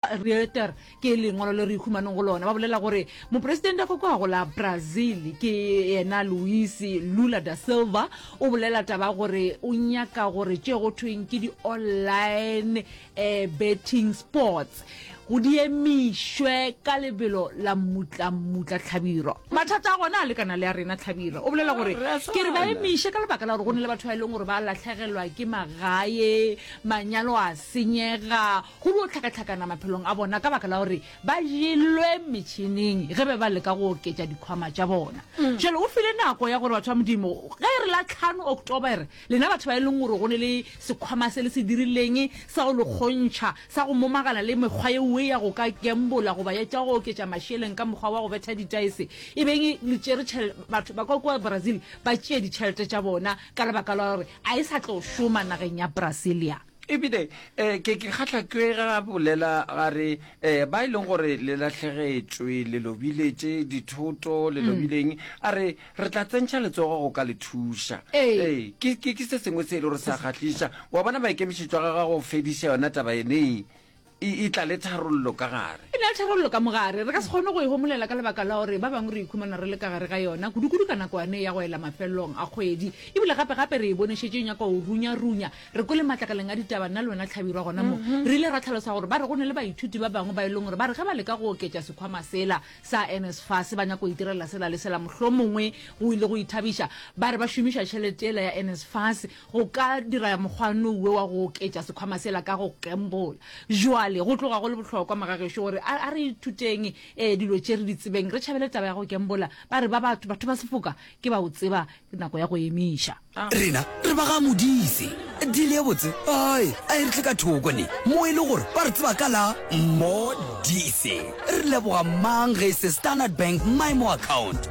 Reuters ke lengwalo le re ikhumaneng go lona ba bolela gore moporesidente a fokogago la Brazil ke yena Luis Lula da Silva o bolela taba gore o nyaka gore tše go thweng ke di-online eh, betting sports go diemišwe ka lebelo la mmutlammutla tlhabiro mathata a gona a lekana le a rena tlhabiro o bolela gore ke re ba emiše ka lebaka la gore go ne le batho ba e leng gore ba latlhegelwa ke magae manyalo a senyega go yo hlakahlakana maphelong a bona ka baka la gore ba jelwe metšhineng ge be ba leka go oketša dikhwama tša bona jalo o file nako ya gore batho ba modimo ge re la tlhano oktobere lena batho ba e leng gore go ne le sekhwama se le se dirileng sa go le kgontšha sa go momagana le mekgwa yeoe ya go ka gembola goba ya tša go oketša mašeleng ka mokgwa wa go betha ditaese e beng le tšere tšhel- batho ba kwa kwa brazil ba tšee ditšhelete tša bona ka lebaka la gore a e sa tlo šoma nageng ya brasilia ebile um ke ke kgatlha ke ga bolela ga re um ba e leng gore le latlhegetšwe le lobile tše dithoto le mm. lobileng a re re tla tsentšha letsogo go ka le thuša ee ke se sengwe se e le gore sa kgatlhiša wa bona maikemišetšo ga ga go fediša yona taba enee e, e tla le tharollo ka gare e na le tharollo ka mogare re ka se kgone go e homolela ka lebaka la gore ba bangwe re ikhumana re le ka gare ga yona kudukudu ka nako yane ya go ela mafelelong a kgwedi ebile gape-gape re e bonešetše nyaka go runya-runya re kwele matlakaleng a ditaba nna le wena tlhabirwa gona mo mm-hmm. re ile ra tlhalosa gore ba re go ne le baithuti ba bangwe ba e leng gore ba re ge ba leka go oketša sekhwama sela sa nsfa se ba nyako go itirela sela le sela mohlomongwe go ile go ithabiša ba re ba šomiša tšhelete ela ya nsfas Go ka dira mokgwanoo we wa go oketša sekhwama sela ka go gembola. Bjale, go tloga go le bohlokwa, mogagešo, gore a, a re ithuteng e, dilo tše re di tsebeng, re tšhabele taba ya go gembola. Ba re ba batho, batho ba sefoka, ke ba o tseba, ke nako ya go emiša. A. Rena re ba ga Modise. Deal ye botse. Ai, a e re tle ka thoko ne, mo e le gore ba re tseba ka la. Mo-dise. Re leboga mang ge e se Standard Bank Maimo Account?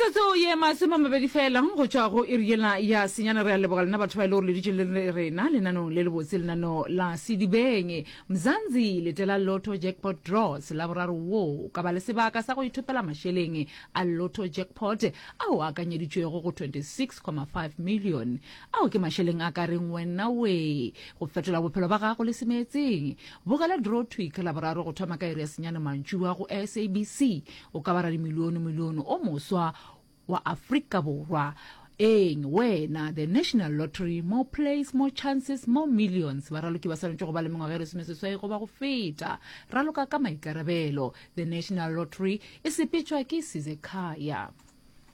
metsotso ye masome a mabedi fela go tšwa go iri yela ya senyana re a leboga lena batho ba e le gore le ditše le rena lenanong le lebotse lenano la sedibeng mzanzi letela lotto jackpot draws la boraro wo o ka ba le sebaka sa go ithopela mašeleng a lotto jackpot ao a akanyeditšwego go 26,5 million ao ke mašeleng a ka reng wena we go fetola bophelo ba gago le semeetseng bogela draw tweak la boraro go thoma ka iri ya senyana mantšua go sabc O ka ba radimilionomilione o moswa wa Afrika Borwa. Eng, wena, the National Lottery, more plays, more chances, more millions. Baraloki ba swanetše go ba le mengwaga e lesomeseswai goba go feta. Raloka ka maikarabelo. The National Lottery e sepetšwa ke Sizekhaya.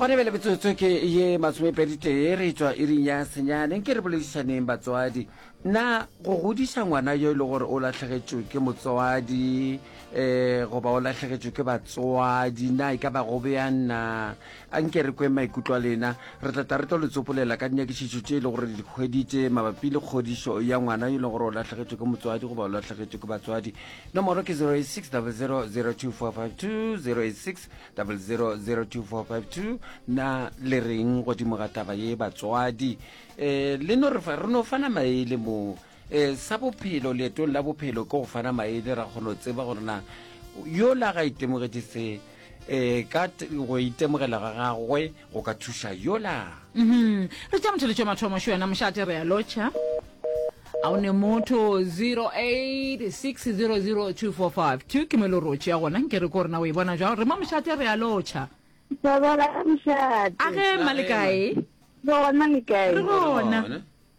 gone bele metsotso ke ye masomepedi tee re tswa iring ya senyaneng ke re boledišaneng batswadi na go godiša ngwana yo e le gore o latlhegetšwe ke motswadi um goba o latlhegetšwe ke batswadi na e ka ba go bjang na a nke re kweng maikutlo a lena re tlata re tlo le tsopolela ka dinyakišišo tše e le gore le dikgweditše mabapi le kgodišo ya ngwana yo e leng gore o latlhegetšwe ke motswadi goba o latlhegetšwe ke batswadi Nomoro ke 0860002452, 0860002452. Na le reng godimo ga taba ye batswadi? Eh, le no re fa- re no fana maele moo. Eh, sa bophelo, leetong la bophelo ke go fana maele ra kgono tseba gore na yola ga itemogetše se e ka go itemogela ga gagwe go ka thuša yola mhm. re tša motheletšo mathomo xo yona mošate re ya lotšha a o ne motho 08600245 ke melo rotše ya gona nke re ko rena o e bona jwang re mo mošate re ya lotšha a ge mmalekae gona lekae re gona